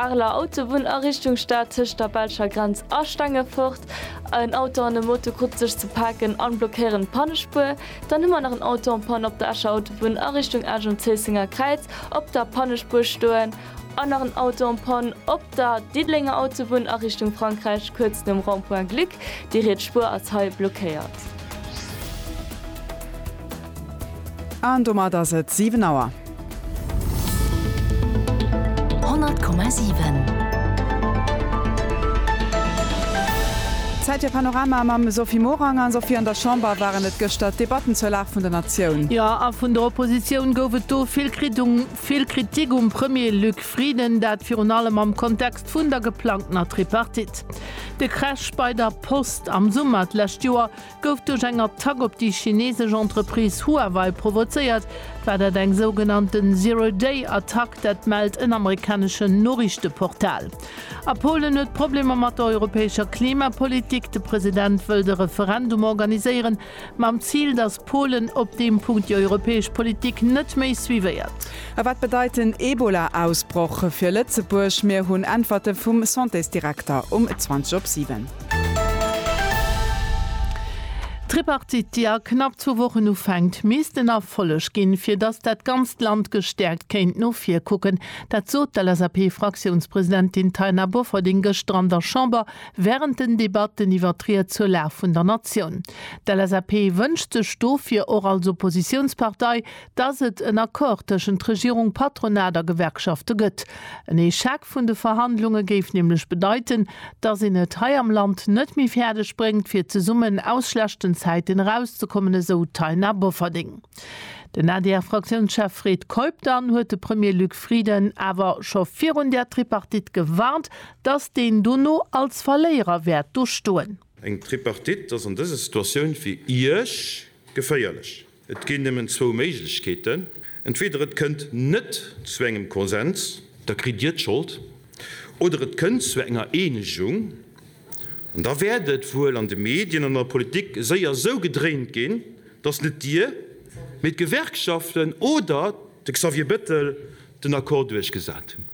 Arler Autobunn a Richtung Stad tëscht der belscher Grenz a Stengefort. En Auto an e Moto krute sech ze paken an blockéieren d'Pannespuer. Dann hu mer nach en Auto en panne op der Escher Autobunn a Richtung Esch um Zéissenger Kräiz op der Pannespuer stoen. An nach en Auto en panne op der Diddelenger Autobunn a Richtung Frankräich kuerz nom Rond-point Glück. Déi riets Spuer ass hei blockéiert. An domat ass et 7 Auer. 100,7. Zäit fir Panorama mam Sophie Morang. A Sophie, an der Chamber waren et gëschter d'Debatten zur Lag vun der Natioun. Jo, a vun der Oppositioun gouf et do vill Kritung, vill Kritik um Premier Luc Frieden, dat virun allem am Kontext vun der geplangtener Tripartite. De Crash bei der Post am Summer d'lescht Joer gouf duerch eng Attack op déi chinesesch Entreprise Huawei provozéiert. War dat eng sougenannten Zero Day Attack? Dat mellt en amerikaneschen Noriichteportal. A Polen huet Problemer mat der europäescher Klimapolitik. De President wëllt e Referendum organiséieren, mam Zil, datt Polen op deem Punkt déi europäesch Politik net méi suivéiert. A wat bedeit den Ebola-Ausbroch fir Lëtzebuerg? Mir hunn Äntwerte vum Santésdirekter um 20 op 7. D'Tripartite, déi a knapp zwou Wochen ufänkt, misst en Erfolleg ginn, fir datt dat ganzt Land gestäerkt kéint no vir kucken. Dat sot d'LSAP-Fraktiounspresidentin Taina Bofferding gëschter an der Chamber wärend den Debatten iwwer d'Ried zur Lag vun der Natioun. D'LSAP wënscht sech dofir och als Oppositiounspartei dass et en Accord tëschent Regierung, Patronat a Gewerkschafte gëtt. En Echec vun de Verhandlunge géif nämlech bedeiten, dass een et hei am Land net méi fäerdeg bréngt, fir zesummen aus schlechten Zäiten erauszekommen, esou d'Taina Bofferding. Den ADR-Fraktiounschef Fred Keup dann huet de Premier Luc Frieden awer scho virun där Tripartite gewarnt, dass deen dono als Verléierer wäert do stoen. Eng Tripartite ass an dëser Situatioun fir Iech geféierlech. Et ginn nëmmen zwou Méiglechkeeten, entweder et kënnt net zu engem Konsens, da kritt Dir d'Schold, oder et kënnt zu enger Eenegung, an da wäert et wuel an de Medien an an der Politik séier esou gedréint ginn, datt net Dir, mee d'Gewerkschaften oder de Xavier Bettel den Accord duerchgesat hunn.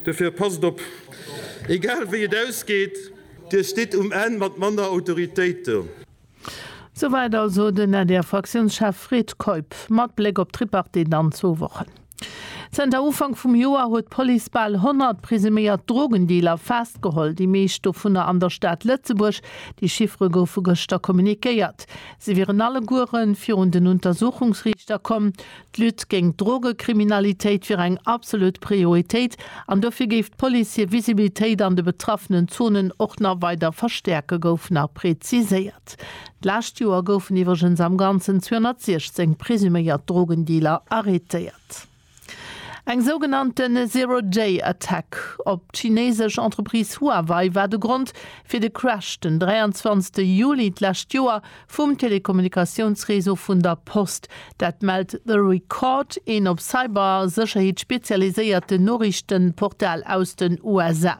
Dofir passt op, egal wéi et ausgeet, Dir stitt um Enn mat manner Autoritéit do. Souwäit also den ADR-Fraktiounschef Fred Keup mat Bléck op d'Tripartite an zwou Wochen. Zënter Ufank vum Joer huet d'Police bal 100 presuméiert Drogendealer festgeholl, déi meescht dovunner an der Stad Lëtzebuerg. Déi Chiffere goufe gëschter kommunikéiert. Se wieren allegueren virun den Untersuchungsriichter komm. D'Lutte géint d'Drogekriminalitéit wier eng absolut Prioritéit an dofir géif d'Police hir Visibilitéit an de betraffenen Zonen och nach weider verstäerken, gouf nach preziséiert. D'lescht Joer goufen iwwregens am Ganzen 216 presuméiert Drogendealer arrêtéiert. Eng sougenannte Zero-Day-Attack op d'chinesesch Entreprise Huawei war de Grond fir de Crash den 23 Juli d'lescht Joer vum Telekommunikatiounsreseau vun der Post. Dat mellt The Record, een op Cybersécherheet spezialiséierten Noriichtenportal aus den USA.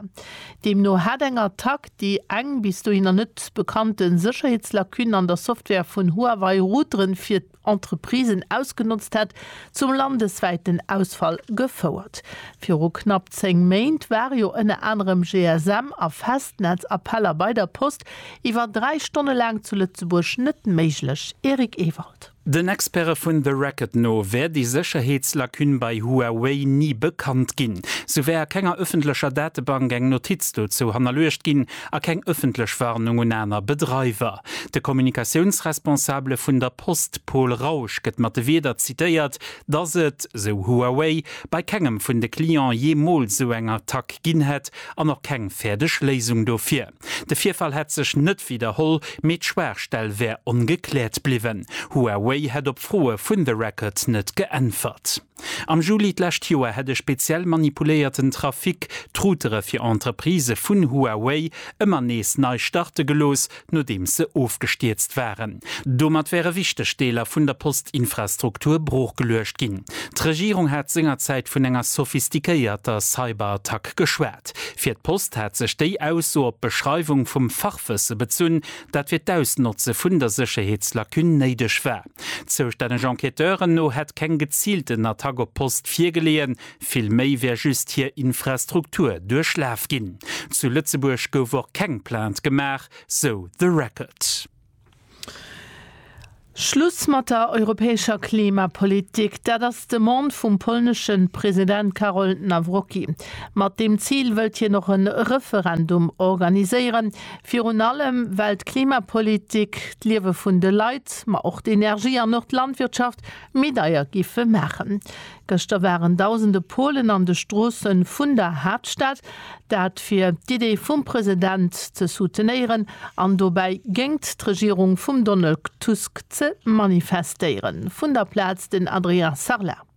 Deemno hat eng Attack, déi eng bis dohinner net bekannte Sécherheetslacune an der Software vun Huawei Routeren fir Entreprisen ausgenotzt hätt, zum landeswäiten Ausfall gefouert. Viru knapp 10 Méint ware jo ënner anerem GSM a Festnetz-Appeller bei der Post iwwer 3 Stonne laang zu Lëtzebuerg net méiglech, Eric Ewald. Den Experte vun The Racket no wär déi Sécherheetslacune bei Huawei ni bekannt ginn. Sou wär a kenger ëffentlecher Datebank eng Notiz dozou hannerluecht ginn a keng ëffentlech Warnung un aner Bedreiwer. De Kommunikatiounsresponsabele vun der Post, Paul Rausch, gëtt mat de Wierder zitéiert, dass et, sou Huawei, bei kengem vun de Client jeemools esou eng Attack ginn hätt an och keng fäerdeg Léisung dofir. De Virfall hätt sech net widderholl, mee d'Schwaachstell wär ongekläert bliwwen. Huawei hätt op Froe vun The Record net geäntwert. Am Juli d'lescht Joer hätt e speziell manipuléierten Trafic d'Routere fir Entreprisë vun Huawei ëmmer nees nei starte gelooss, nodeems se ofgestierzt waren. Domat wäre wichteg Deeler vun der Postinfrastruktur broochgeluecht ginn. D'Regierung hat sengerzäit vun enger sophistiquéierter Cyberattack geschwat. Fir d'Post hat sech déi Ausso op d'Beschreiwung vum Fachwësse bezunn, dat fir d'Ausnotze vun der Sécherheetslacune néideg war. Zoustänneg Enquêteuren no hätt keng geziilten Attack op d'Post virgeleeën, vill méi wär just hir Infrastruktur duerchlaf ginn. Zu Lëtzebuerg gouf och keng Plainte gemaach, sou The Record. Schluss mat der europäescher Klimapolitik, dat ass d'Demande vum polnesche President Karol Nawrocki. Mat deem Zil wëllt hien och e Referendum organiséieren, Virun allem, well d'Klimapolitik d'Liewe vun de Leit, ma och d'Energie an och d'Landwirtschaft méi deier géife maachen. Gëschter waren dausende Polen an de Stroosse vun der Haaptstad. Dat fir d'Idee vum President ze soutenéieren an dobäi géingt d'Regierung vum Donald Tusk ze manifestéieren. Vun der Plaz den Adrien Sarlat.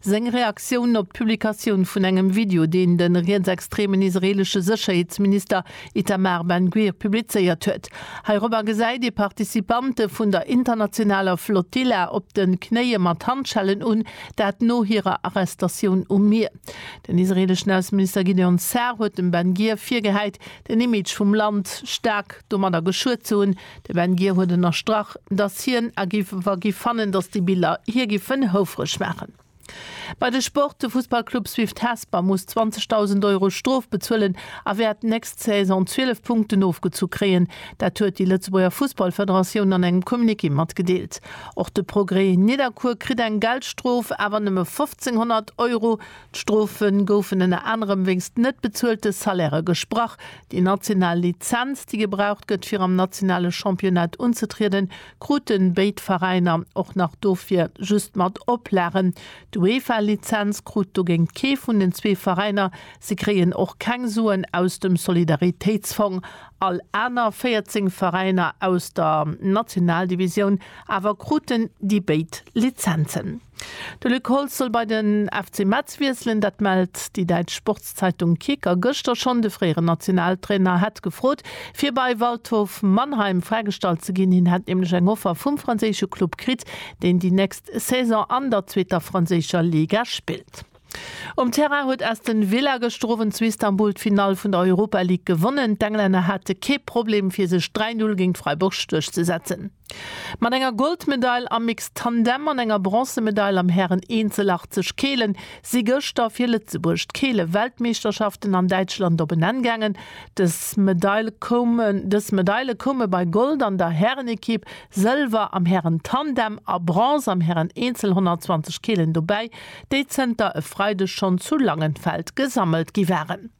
Seng Reaktioun op d'Publikatioun vun engem Video, deen de rietsextremen israeelesche Sécherheetsminister Itamar Ben Gvir publizéiert huet. Heirobber gesäit ee Participante vun der internationaler Flotilla op de Knéie mat Handschellen un, dat no hirer Arrestatioun um Mier. Den israeeleschen Ausseminister Gideon Sa'ar huet dem Ben Gvir virgehäit, den Image vum Land staark domadder geschuet ze hunn, De Ben Ghir huet ënnerstrach, datt hien a giff wa giff fannen, datt déi Biller hie giffen houfreg maachen. Bei de Sport, De Fussballclub Swift Hesper muss 20.000 Euro Strof bezuelen a wäert nächst Saison 12 Punkten ofgezu kréien. Dat huet déi Lëtzebuerger Fussballfederatioun an engem Communiqué matgedeelt. Och de Progrès Nidderkuer kritt eng Geldstrof, awer nëmme 1.500 Euro. D'Strofe goufen ënner anerem wéinst net bezuelte Salairë gesprach, Déi national Lizenz, déi gebraucht gëtt fir am nationale Championnat unzetrieden, kruten béid Veräiner, och nach dofir just mat Oplagen. D'UEFA-Lizenz krut dogéint kee vun den zwee Veräiner, se kréien och keng Suen aus dem Solidaritéitsfong, all aner 14 Veräiner aus der Nationaldivisioun awer kruten déi béid Lizenzen. De Luc Holtz soll bei den FC Metz wiesselen. Dat mellt déi däitsch Sportszeitung Kicker gëschter schonn. De fréieren Nationaltrainer hätt gefrot, fir bei Waldhof Mannheim fräigestallt ze ginn. Hien hätt nämlech eng Offer vum franséische Club kritt, deen déi nächst Saison an der zweeter franséischer Liga spillt. Um Terrain huet Aston Villa gëschter Owend zu Istanbul d'Finall vun der Europa League gewonnen. D'Englänner hate kee Problem, fir sech 3, 0 géint Freiburg duerchzesetzen. Mat enger Goldmedail am Mixed Tandem an enger Bronzemedail am Hären-Eenzel 80 Kele si gëschter fir Lëtzebuerg d'Keele-Weltmeeschterschaften an Däitschland op en Enn gaangen. Dës Medaile koume bei Gold an der Härenekipp, Sëlwer am Hären-Tandem a Bronze am Hären-Eenzel 120 Kelen dobäi, déi zënter e Freideg schonn zu Langenfeld gesammelt gi waren.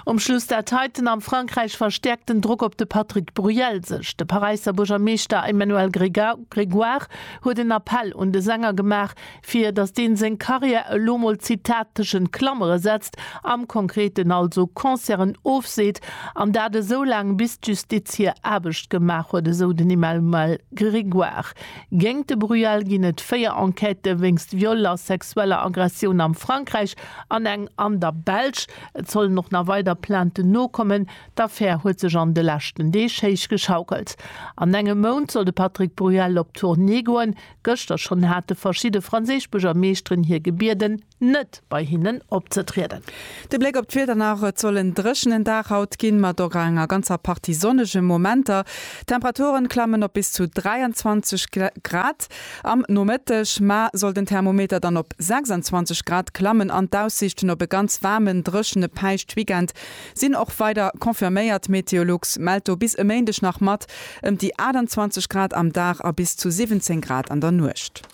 Um Schluss dat heiten, Am Frankräich verstäerkt den Drock op de Patrick Bruel sech. De Paräisser Buergermeeschter Emmanuel Grégoire huet en Appell un de Sänger gemaach, fir datt deen seng Karriär elo mol, Zitat, tëschent Klammere setzt, am Konkreten also Concerten ofseet, an dat esou laang bis d'Justiz hir Aarbecht gemaach huet, esou den Emmanuel Grégoire. Géingt de Bruel ginn et 4 Enquêtë wéinst Viol a sexueller Aggressioun am Frankräich. An eng an der Belsch. Et sollen och nach weider Plainten nokommen. D'Affär huet sech an de leschten Deeg héich geschaukelt. An engem Mount soll de Patrick Bruel op Tournée goen. Gëschter schonn hate verschidde franséisch Buergermeeschteren hie gebieden, net bei hinnen opzetrieden. De Bléck op d'Wieder nach, Et soll en dréchenen Dag haut ginn, mat och enger ganzer Partie sonnege Momenter. D'Temperaturen klammen op bis zu 23 Grad. Am Nomëtteg, ma, soll den Thermometer dann op 26 Grad klammen an d'Aussiichten op e ganz waarmen, dréchene Päischt-Weekend sinn och weider confirméiert. Meteolux mellt do bis e Méindeg nach mat ëm déi 28 Grad am Dag a bis zu 17 Grad an der Nuecht.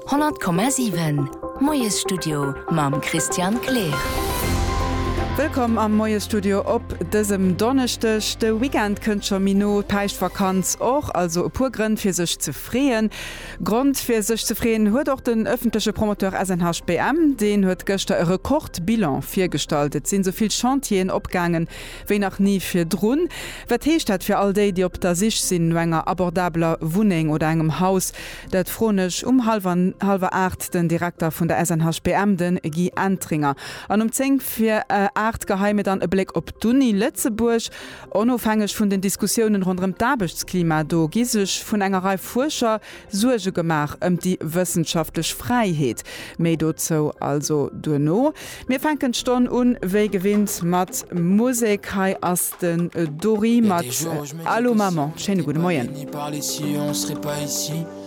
100,7. Moiesstudio mam Christian Kleer. Wëllkomm am Moiesstudio op dësem Donneschdeg. De Weekend kënnt scho méi no, d'Päischtvakanz och. Also e puer Grënn fir sech ze freeën. Grond fir sech ze freeën huet och den ëffentleche Promoteur SNHBM. Deen huet gëschter e Rekordbilan virgestallt. Et sinn esou vill Chantieren opgaange wéi nach ni virdrun. Wat heescht dat fir all déi, déi op der Sich sinn no enger abordabeler Wunneng oder engem Haus? Dat froen ech um hallwer hallwer aacht den Direkter vun der SNHBM, de Guy Entringer, an um zéng vir aacht geheie mir dann e Bléck op d'Uni Lëtzebuerg. Onofhängeg vun den Diskussiounen ronderëm d'Aarbechtsklima do gi sech vun enger Rei Fuerscher Suerge gemaach ëm déi wëssenschaftlech Fräiheet. Méi dozou also duerno. Mir fänken d'Stonn un wéi gewinnt mat Musek. Hei ass den Dory mat Allô Maman. Schéine gudde Moien.